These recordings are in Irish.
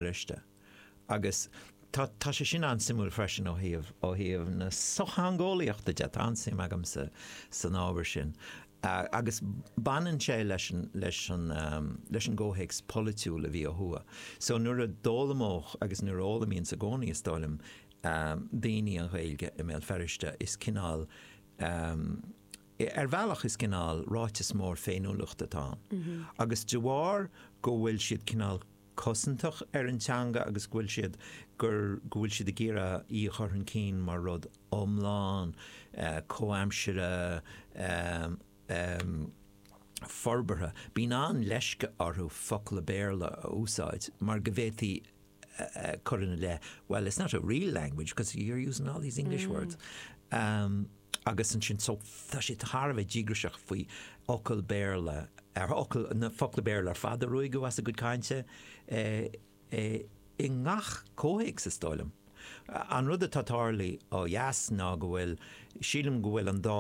bhriste. Agus tá sé sin an-suimiúil freisin ó thaobh na sochtheangeolaíochta de, tá an-suim agamsa san ábhar sin. Agus baineann sé leis an gcomhthéacs polaitiúil a bhí ó thuaidh. So nuair a d'fhoghlaimeodh, agus nuair a fhoghlaimíonn i gcónaí is dóigh liom, daoine an Ghaeilge i mBéal Feirste is cineál, ar bhealach is cineál ráiteas mór féiniúlachta atá ann. Agus de bharr go bhfuil siad cineál, cosantach ar an teanga agus go bhfuil siad gur go bhfuil siad ag iarraidh í a chur chun cinn mar rud iomlán, comhaimseartha, forbartha. Bíonn an-leisce orthu focla Béarla a úsáid mar go bhféadfaí cur ina leith, well, it's not a real language because you're using all these English words. Agus ansin, so, tá siad thar a bheith díograiseach faoi fhocail Béarla, ar fhocail, na focla Béarla ar fad a ruaigeadh as a gcuid cainte, i ngach comhthéacs, is dóigh liom. An rud atá ag tarlú ó dheas ná go bhfuil, sílim go bhfuil an dá,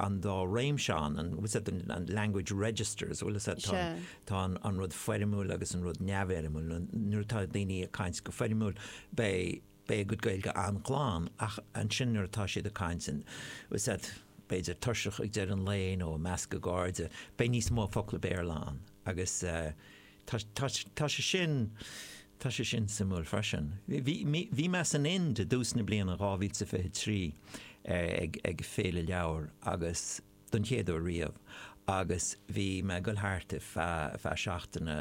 an dá réimse ann, an, bhfuil fhios a'd, an language registers, bhfuil fhios a'd, tá an, tá an, an rud foirmiúil agus an rud neamhfhoirmiúil, nuair atá daoine ag caint go foirmiúil, beidh, beidh a gcuid Gaeilge an-ghlan, ach ansin nuair atá siad ag caint, bhfuil fhios a'd, b'fhéidir, tuirseach ag deireadh an lae nó i measc a gcairde, beidh níos mó focla Béarla ann. Agus tá, tá, tá sé sin, tá sé sin suimiúil freisin. Bhí, bhí, bhí mé san Ind i dtús na bliana 2023 ag, ag féile leabhar agus. don chéad uair riamh agus bhí mé ag goil thart ar feadh seachtaine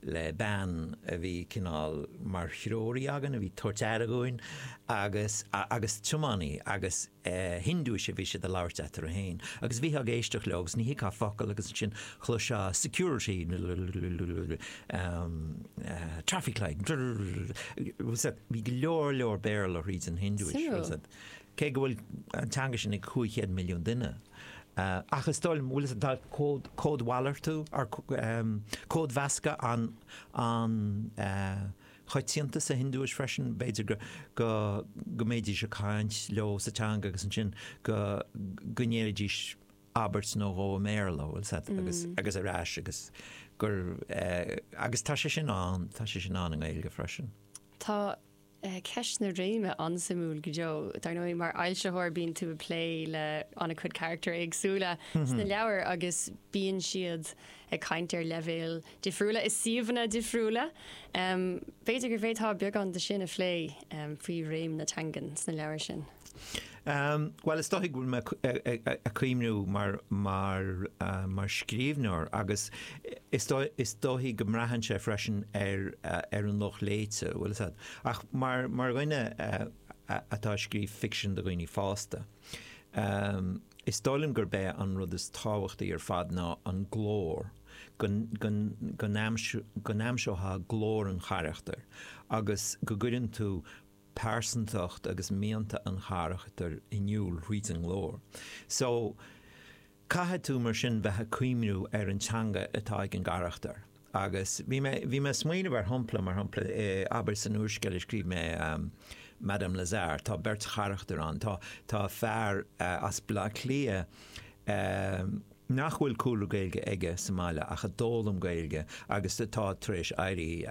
le bean a bhí cineál mar threoraí againn, a bhí ag tabhairt aire dhúinn agus agus tiománaí agus Hiondúis a bhí siad ag labhairt eatarthu féin agus bhítheá ag éisteacht leo agus ní thuigfeá focal agus ansin chloisfeá security traffic lights bhí go leor leor Béarla thríd an Hiondúis. cé go bhfuil an teanga sin ag 500 milliún duine, ach is dóigh liom, bhfuil fhios a'd cód, códmhalartú, or códmheascadh an-an-choitianta sa Hiondúis freisin, b'fhéidir go go go mbeidís a' caint leo sa teanga agus ansin go go ndéarfaidís abairt nó dhó i mBéarla, bhfuil fhios a'd, agus agus ar ais agus gur eh agus tá sé sin ann, tá sé sin ann i nGaeilge freisin. Tá. Ceist na réime, an-suimiúil go deo. Dar ndóigh, mar fhoilsitheoir bíonn tú ag plé le an-chuid carachtair éagsúla sna leabhair agus bíonn siad ag caint ar leibhéil difriúla i suíomhanna difriúla. B'fhéidir go bhféadfá beagán de sin a phlé, faoi réim na teangan sna leabhair sin. Bhuel, is dóigh go bhfuil mé ag cuimhniú air mar scríbhneoir agus is dóigh go mbraitheann sé freisin ar an lucht léite, tá's agat, ach mar dhuine atá ag scríobh ficsean do dhaoine fásta, is dóigh liom gurb é an rud is tábhachtaí ar fad ná an glór, go n-aimseofá glór an charachtair agus go gcuireann tú pearsantacht agus mianta an charachtair in iúl thríd an nglór. So, caithfidh tú mar sin bheith ag cuimhniú ar an teanga atá ag an gcarachtar. Agus bhí mé, bhí mé ag smaoineamh ar shampla, mar shampla, abair san úrscéal a scríobh mé, Madame Lazare, tá beirt charachtar ann, tá, tá fear as Baile Átha Cliath nach bhfuil cúlra Gaeilge aige sa mbaile ach a d'fhoghlaim Gaeilge agus atá tar éis éirí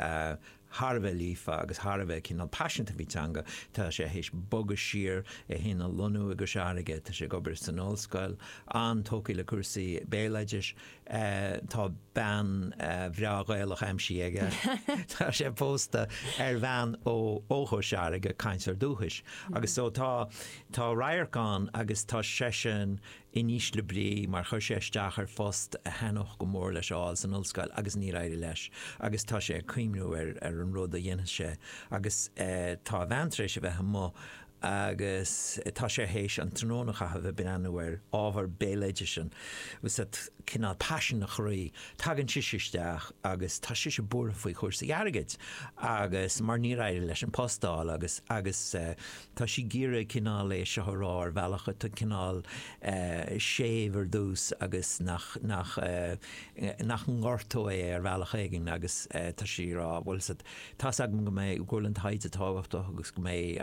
thar a bheith líofa agus thar a bheith cineál paiseanta faoin teanga. Tá sé théis bogadh siar, é fhéin a lonnú i gCois Fharraige, tá sé ag obair san ollscoil, an-tógtha le cúrsaí béaloidis, tá bean bhreá Ghaelach aimsithe aige, tá sé pósta ar bhean ó ó Chois Fharraige, cainteoir dúchais, agus so tá tá radharc ann agus tá seisean, in ísle brí mar chuir sé isteach ar phost a thaitneodh go mór leis a fháil san ollscoil agus níor éirigh leis agus tá sé ag cuimhniú ar ar an rud a dhéanfas sé agus tá a bhean tar éis a bheith amuigh agus tá sé théis an tráthnóna a chaitheamh ag breathnú ar ábhar béaloidis atá cineál paisean a chroí, tagann sise isteach agus tá sise buartha faoi chúrsaí airgid agus mar níor éirigh leis an post a fháil agus agus Tá sí ag iarraidh cineál é seo a rá ar bhealach atá cineál séimh ar dtús agus nach, nach, nach ngortóidh é ar bhealach éigin agus tá sí ag rá, tá's agat, tá's agam go mbeidh, go bhfuil an taighde tábhachtach agus go mbeidh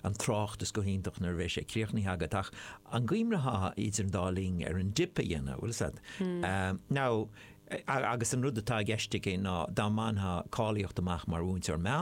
an tráchtas go hiontach nuair a bheidh sé críochnaithe agat ach an gcuimhneofá idir an dá linn ar an dip a dhéanamh, tá's agat, now, agus an rud atá i gceist aici ná dá mbaintheá cáilíocht amach mar mhúinteoir meán